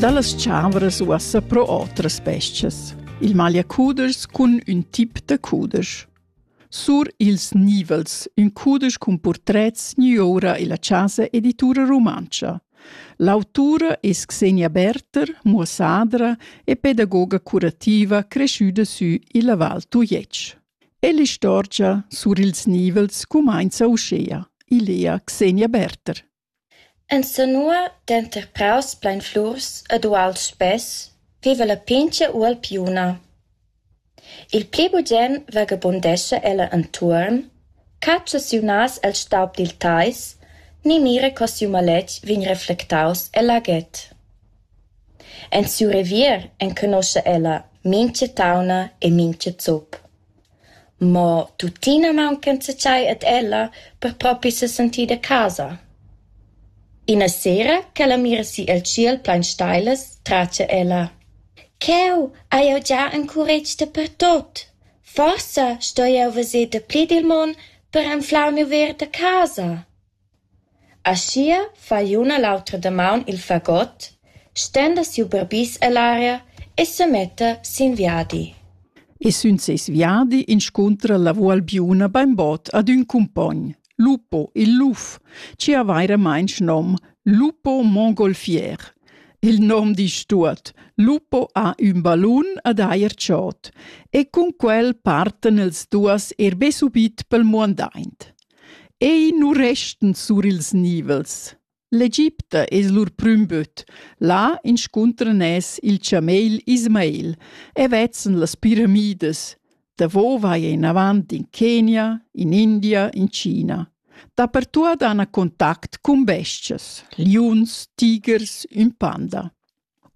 Dallas tscharvras uossa pro otras bes-chas. Il magliacuders cun ün tip da cuders. Sur ils nivels, ün cuders cun purtrets niura illa Chasa Editura Rumantscha. L'autura es Xenia Berter, muossadra e pedagoga curativa cresciuda sü illa Val Tujetsch. Ell'istorgia sur ils nivels cumainza uschea, ilea Xenia Berter. Insanua, denter praus plein flurs ed uals spess, viva la pintga ualpiuna. Il pli bugen vagabundescha ella entuorn, catscha siu nas el staub dil teis ni mira co siu maletg vegn reflectaus el aget. En siu revier enconoscha ella mintga tauna e mintga zup. Mo tuttina mauncanza tschei ad ella per propi sesentir da casa. Ina sera ch'ella mira si el tschiel plein steilas, tratga ella: «Cheu hai jeu gia encuretg dapertut. Forsa stoi jeu veser dapli dil mon per anflar miu ver da casa.» Aschia fa l'un e l'auter damaun il fagot, stenda siu barbis ell'aria e semetta sin viadi. E sün seis viadi inscuntra la Vualbiuna bainbod ad ün cumpogn, Lupo il luf, chi ha vairamaing nom Lupo Mongolfier. Il nom disch tuot: Lupo ha ün ballun ad eir chod e cun quel partan els duos er be subit pel muandaint. Ei nu restan sur ils nivels. L'Egipta es lur prüm böt. Là inscuntran es il chamel Ismael e vezzen las piramidas. Davo vai inavant in Kenia, in India, in China. Dapertuot han contact cun bestias, liuns, tigers, ün panda.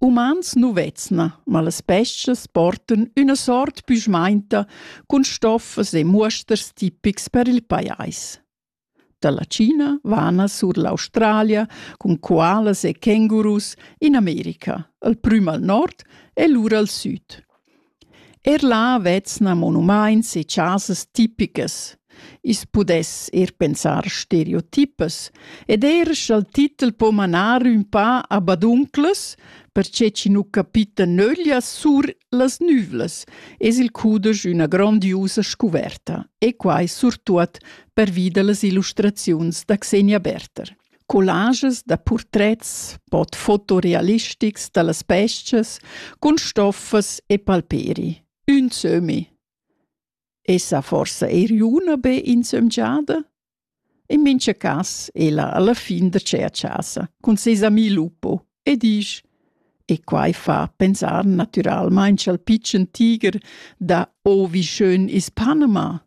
Umans nu vezna, ma las bes-chas portan üna sort büschmainta cun stoffas e muosters tipics per il pajais. Dalla China vana sur l'Australia cun koalas e kängurus in America, al prüm al nord e lura al süd. Er là vezna monumaints e chasas tipicas. I's pudess eir pensar stereotipas ed eir scha'l titel po manar ün pa a badunclas, perche chi nu capita nöglia sur las nüvlas, es il cudesch üna grondiusa scuverta e quai surtuot pervi da las illustraziuns da Xenia Berther. collages da purtrets, bod fotorealistics dallas bestias cun stoffas e palperi. Ün sömi. Esa forsa eir üna be insömgiada? In mincha cas ella alla fin da cher chasa cun seis ami Lupo e disch e quai fa pensar natüralmaing al pitschen tiger da «Oh, wie schön ist Panama!»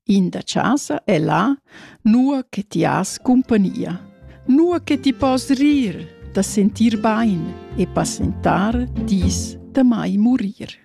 In da chasa è là, nua che ti has cumpagnia, nua che ti pos rir da sentir bain e passentar dis da mai murir.